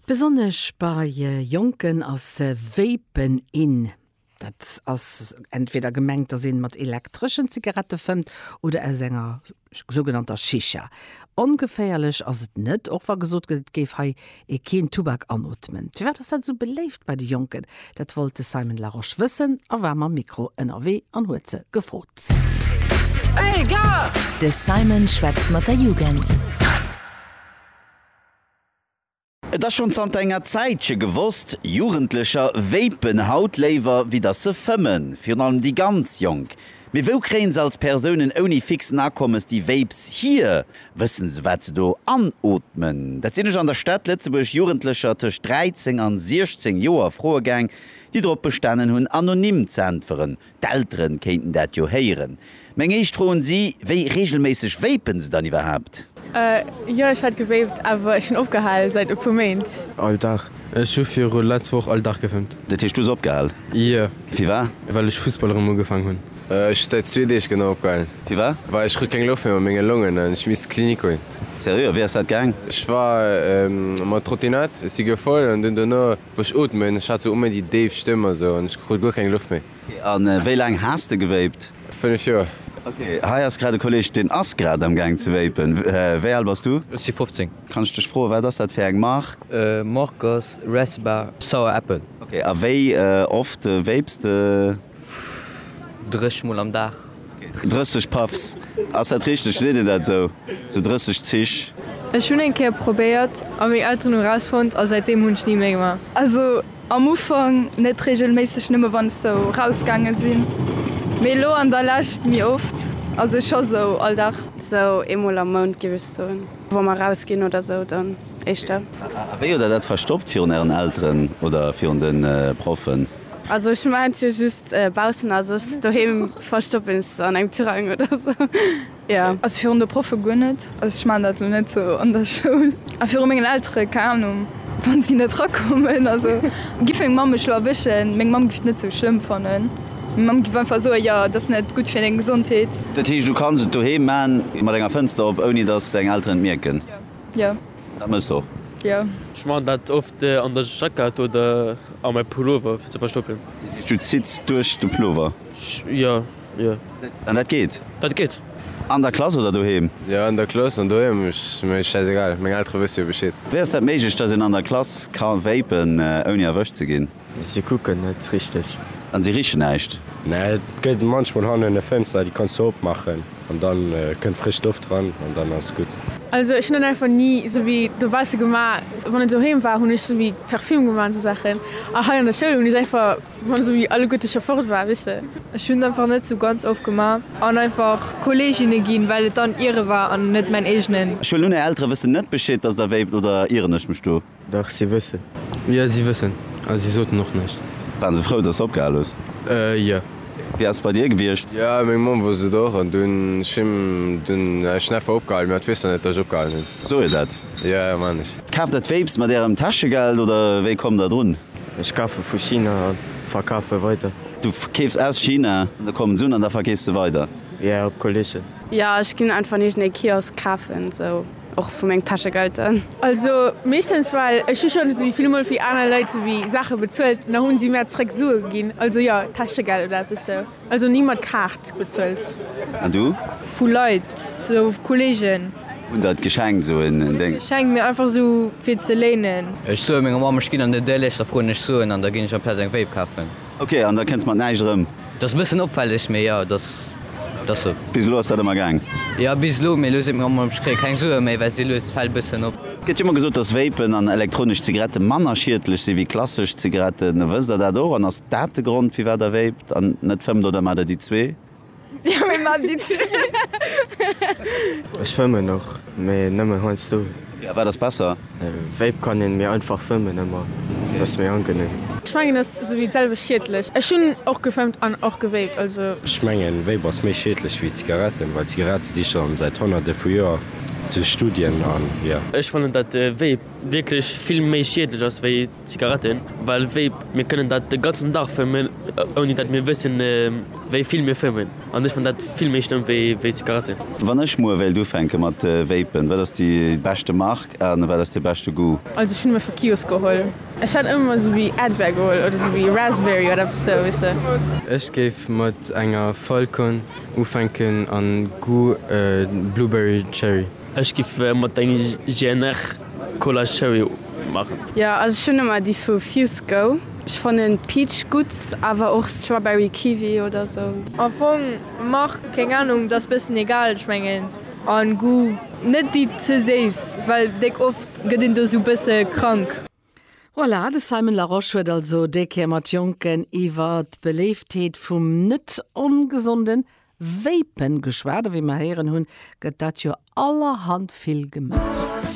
Besonnesch bei Jonken ass Vapen in. Dat ass entweder gemengt, dass een mat elektreschen Zigarette fëmmt oder aus enger sougenannter Shisha. Ongeféierlech ass et net, och wa gesot gëtt, et géif hei ee keen Tubak anootmen. Firwat ass dat esou beléift bei de Jonken? Dat wollt de Simon Larosche wëssen a war mam Mikro ënnerwee an huet se gefrot. De Simon schwätzt mat der Jugend. Et ass schonn zanter enger Zäitche gewosst, Jugendlecher vapen haut léiwer wéi datt se fëmmen, virun allem déi ganz Jonk. Mee wou kréien se als Persounen ouni fixen Akommes déi Vapes hier? Wëssen se wat se do anootmen? Dat sinn ech an der Stad Lëtzebuerg Jugendlecher tëscht 13 an 16 Joer froe gaang, déi drop bestanen hunn anonym z'äntweren. D'Elteren kéinten dat jo héieren. Meng éischt Fro un si, Wéi reegelméisseg vapen se dann iwwerhaapt? Jo ech hat gevapt, awer ech hunn opgehal säit e puer Méint. All Dag. Ech hu viru letz Woch all Dag gevapt. Dat heescht du hues opgehal? Jo. Firwat? Well ech Fussball erëm ugefaang hunn. Ech si säit zwee Deeg genau opgehalen. Firwar? Well ech krut keng Loft méi mat menge Longen an ech misst zur Klinik goen. Seriö? A wéi ass dat gaang? Ech war mat Trottinett, ech si gefoll an dunn dono wou ech ootmen, ech hat sou um méi déi déif Stëmm a sou an ech krut guer keng Loft méi. Ok, a wéi laang has de gewéipt? 5 Joer. Ok, hei ass grad e Kolleg deen ass grad am gaang ze wéipen. Wéi al bass du? Ech si 15. Kann ech dech froen wat ass dat fir eng Mark? Mark ass Resba Sour Apple. Ok, a wéi oft wéips de? 30 mol am Dag. 30 Puffs, ass dat richteg? Seet een dat esou? Esou 30 Zich? Ech hunn eng Kéier probéiert a meng Elteren hu rausfonnt a säitdeem hunn ech ni méi gemaach. Also am Ufank net regelméisseg, nëmme wann ech sou rausgaange sinn, mee elo an der Lescht méi oft, also scho sou all Dag. Sou eemol am Mount géif ech soen, wa mer rausginn oder sou, dann éischter. A wéi huet der dat verstoppt virun ären Elteren oder virun de Proffen? Also ech maan jo just baussen a soss doheem verstoppen ech se an engem Tirang oder sou jo. Also virun de Proffe guer net, also ech maan dat elo net sou an der Schoul. A virun mengen Eltere, keng Ahnung, wann si net rakommen, also giff meng Mamm mech elo erwëschen, meng Mamm giff et net sou schlëmm fannen, meng Mamm giff einfach soen, jo et ass net gutt fir deng Gesondheet. Dat heescht du kanns et doheem maan mat enger Fënster op ouni dass deng Elteren et mierken? Jo. Dat mësst och. Jo. Ech maachen dat oft an der Jackett oder a mäi Pullover fir ze verstoppen. Dat heescht du zitts duerch de Pullover? Jo, jo. An dat geet? Dat geet. An der Klass oder doheem? Jo, an der Klass an doheem ass mir schäiss egal, meng Eltere wësse jo Bescheed. Wéi ass dat méiglech, datt een an der Klass ka vapen ouni erwëscht ze ginn? Se kucken net richteg. An se richen näischt. Mä et gëtt munchmol hannen e Fënster, déi kanns de opmaachen an da kënnt frësch Loft dran an dann ass gutt. Also ech hunn dann einfach ni esou wéi dobausse gemaach. Wann et doheem war, hunn ech esou wéi Parfüm gemaach an esou Saachen. A hei an der Schoul hunn ech einfach, wann esou wéi alleguerte scho fort war, weess de. Ech hunn einfach net esou ganz oft gemaach an einfach Kolleeginne ginn, well et dann hire war an net mäin eegenen. Ech huelen un, är Eltere wëssen net Bescheed, dass der wéipt, oder ieren ech mech do? Dach, si wëssen. Jo, si wëssen. A si soten och näischt. Waren se frou, dass de opgehal hues? Jo. Wéi ass et bei dir gewiescht? Jo, meng Mamm wosst et och. An dunn hu dunn ech neffe opgehalen. Mä et weess der net, dass ech opgehalen hunn. Soe jo dat. Jo, man ech. Kaaft der d'Vapes mat ärem Täschegeld oder wéi kommt der drun? Ech kafe vu China a verkafe weider. Du keefs aus China, da kommen se un an da verkeefs de weider? Jo, op Kolleegen. Jo, ech ginn einfach an iergend ee Kiosk kafen, sou. Och vu meng Täschegelder. Also meeschtens, well ech hu schonn esou vill mol fir aner Leit souwéi Saache bezuelt an da hu si mär zréck Sue ginn. Also jo, Täschegeld oder eppes sou. Also ni mat Kaart bezuelt. An du? Vu Leit, sou Kolleegen. Hunn der et geschenkt, sou en Déng? Net geschenkt, mee einfach sou fir ze léinen. Ech soe menger Mamm, ech ginn an den Dëllesch, da froen ech Suen an da ginn ech amplaz eng Vape kafen. Ok, an da kënnst mat näischt erëm. Dass e bëssen opfälleg, mee jo, dass dass sou. Bis elo ass dat ëmmer gaang? Jo, bis elo, mee elo seet meng Mamm, ech kréie keng Sue méi, well si lues d'Fäll bëssen op. Et gëtt jo ëmmer gesot, dass Vapen an elektronesch Zigarette manner schiedlech si wéi klassesch Zigaretten. Wësst Der dat och? An ass dat de Grond, firwat Der vapt an net fëmmt, oder maacht Der déi zwee? Ech fëmmen och, mee nëmmen heiansdo. Wat ass besser? Vape kann een méi einfach fëmmen, ëmmer ass méi angenehm. Ech mengen ass esou wéi d'selwecht schiedlech. Ech hunn och gefëmmt an och gewaped, also. Ech mengen Vape ass méi schiedlech wéi Zigaretten, well Zigarette si schonn säit honnerte vu Joer zu Studien an jo. Ech fannen dat Vape wierklech vill méi schiedlech ass wéi Zigaretten, well wéi mir kënnen dat de ganzen Dag fëmmen ouni dat mir wëssen wéi vill mir fëmmen an ech fannen dat vill méi schlëmm wéi wéi Zigaretten. Wann ech muer wéilt ufänke mat vapen, wat ass déi beschte Mark a wat ass de beschte Goût? Also ech hunn ëmmer vu Kios geholl. Ech hätt ëmmer esou wéi Advair geholl oder esou wéi Raspberry oder eppes sou weess de. Ech géif mat enger Falcon ufänken an Goût Blueberry Cherry. Ech giff mat der GNR Cola Cherry machen. Jo also ech hun emmer déi vu Fuse Go. Ech fannen Peach gudd, awer och Strawberry Kiwi oder sou. Am Fong Mark keng Ahnung, dass bessen egal ech mengen an Goût. Net déi ze séiss, well déck oft get een do sou bessen krank. Voilà, de Simon Larosche huet also déi Kéier mat Jonken iwwer d'Beléiftheet vum net ongesonden Vapen geschwat. A wéi mer héieren hunn, gëtt dat jo allerhand vill gemaach.